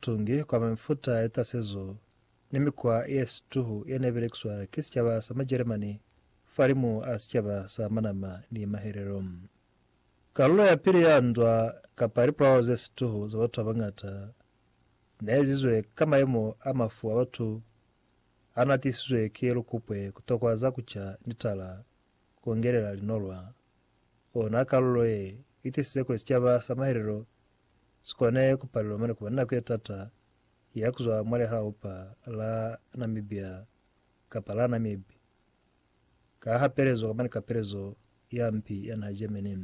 Tungi kwa mefuta ye tasezo ni mikwa ye situhu ye ne belekiswa ki sicaba sa Majeremani fahalimu a sicaba sa manama ni mahelelo. Kalulo ya pili ya ndwa kapa lipulao ze situhu za batu ba bañata ne ezizwe ka mayemo a mafu a batu a na tisizwe ki lukupwe, ku tokwa za ku ca ni tala, ku ngelela linolwa. Ona kalulo ye i tisize kuli sicaba sa mahelelo si kone ku palelwa mane ku ba ni nako ye t'ata ya ku zwa mwa lihaupa la Namibia kapa la Namib ka hapelezo kamba ni kapelezo ya mpi ya naha Germany.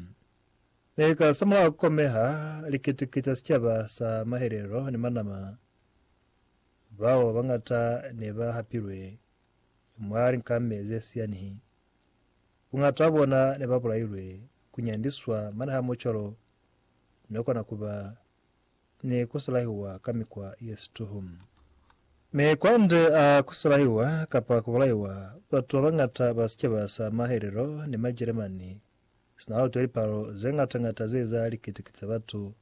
Mi ka sa mulaho ku komeha likitiki ca sicaba sa mahelelo ni manama bao ba bañata ne ba hapilwe mwa linkame ze si yanihi. Buñata bwa bona ne ba bulailwe ku nyandiswa mane ha mucwalo ne kona kuba ni kusulahiwa ka mikwa ye situhu. Mi kwande a kusulahiwa kapa kubulaiwa, batu babangata ba sicaba sa mahelelo ni Majeremani sina utwe lipalo zengatangata ze za likitiki za batu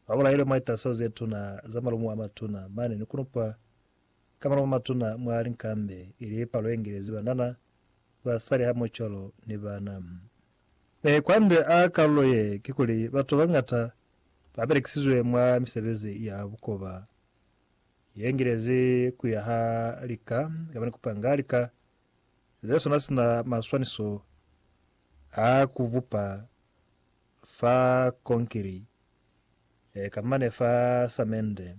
babulailwe mwa litaso zetuna za malumu amatuna mane ni kunupwa ka malumu amatuna mwa linkambe, ili palo yengelezi banana, basali hamoho cwalo ni bana. Mi kwande a kalulo ye, kikuli batu babañata babelekisizwe mwa misebezi ya bukoba yengilezi kuya ha lika kamba ni kupanga lika zesona sina maswaniso a kubupa fa konkiri kamba ne fa samende.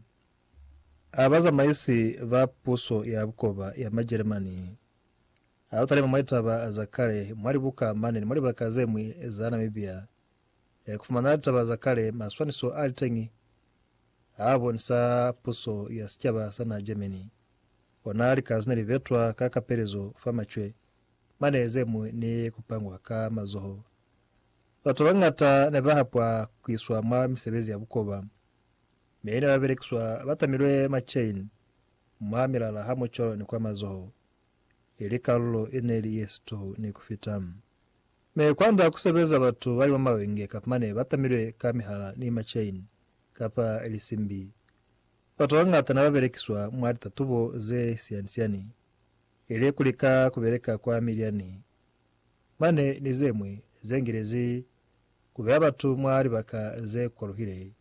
A bazamaisi ba puso ya bukoba ya Majeremani Ha u talima mwa litaba za kale mwa libuka mane ni mwa libaka ze ñwi za Namibia, ku fumana litaba za kale, maswaniso a li teñi a bonisa puso ya sicaba sa naha Germany. Ona lika ze ne li betwa ka kapelezo fa macwe mane ze ñwi ni ku pangwa ka mazoho. Batu ba bañata ne ba hapwa ku iswa mwa misebezi ya bukoba, mi ne ba belekiswa ba tamilwe macheini mwa milala hamoco ni kwa mazoho. ili kalulo ineli yesito ni kufita. Mi kwanda kusebeza batu bali mwa mawenge kapa mane batamilwe ka mihala ni ma chain kapa lisimbi. Batu babañata ne babelekiswa mwa litatubo ze siani-siani, ili kulika kubeleka kwa milyani mane ni zemwi zengilezi kubeya batu mwa libaka ze kwaluhile,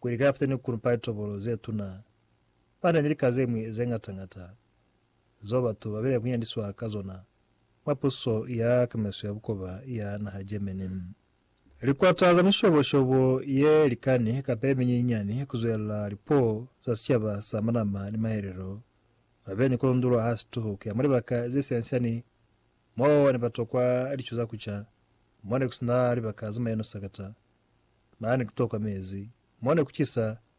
kuli kafita ni kunupa litobolo zetuna, mane ni lika zemwi zengata-ngata. zeo batu ba bile kunyandiswa ka zona mwa puso ya kamiso ya bukoba ya naha Germany. Likwata za mishobo-shobo ye likani kapa ye minyinyani ku zwelela lipuo za sicaba sa manama ni mahelelo ba be ni ku lundulwa ha situhu ku ya mwa libaka ze siani-siani mo ne ba tokwa lico za ku ca, mo ne ku si na libaka za maino sakata, mane ku tokwa mezi, mo ne ku cisa,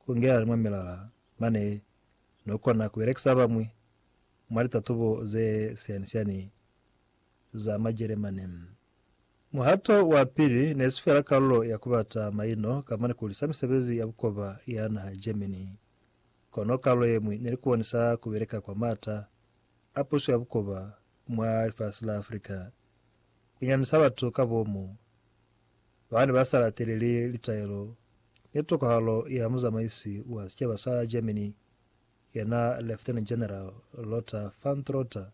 Ku ingelelani mwa milala mane no kona ku belekisa bañwi mwa litatubo ze siyani-siyani za Majeremani. Muhato wa pili ne si fela kalulo ya ku bata maino kamba ni ku lisa misebezi ya bukoba ya naha Germany, kono kalulo ye ñwi ne li ku bonisa ku beleka kwa m'ata a puso ya bukoba mwa lifasi la Afrika, ku nyanisa batu ka bomu ba ne ba sa lateleli litaelo ni tokahalo ya muzamaisi wa sicaba sa Germany, yena Lieutenant General Lothar von Trotha,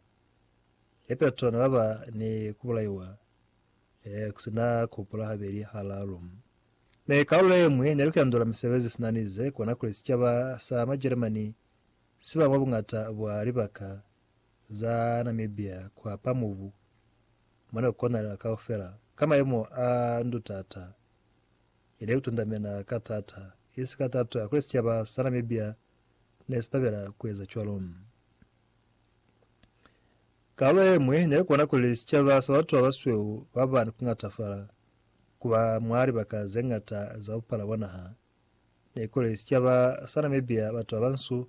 lipeto ne ba ba ni ku bulaiwa eh, ku si na ku hupula habeli halalu. Mi kalulo ye ñwi ne lu kendula misebezi sina ni ze kona kuli sicaba sa Majeremani si ba mwa buñata bwa libaka za Namibia kuhapa mubu mone kukonalela kaufela ka maimo a ndutata, ili kutundamena ka taata. Isi ka tato yakuli sicaba sa Namibia nesitabela kueza cwalo. Kaalo yemwi nekona kuli sicaba sa batu babasweu baba ni kungatafala kuba mwa libaka zeñata za bupala bwa naha, nekuli sicaba sa Namibia batu babansu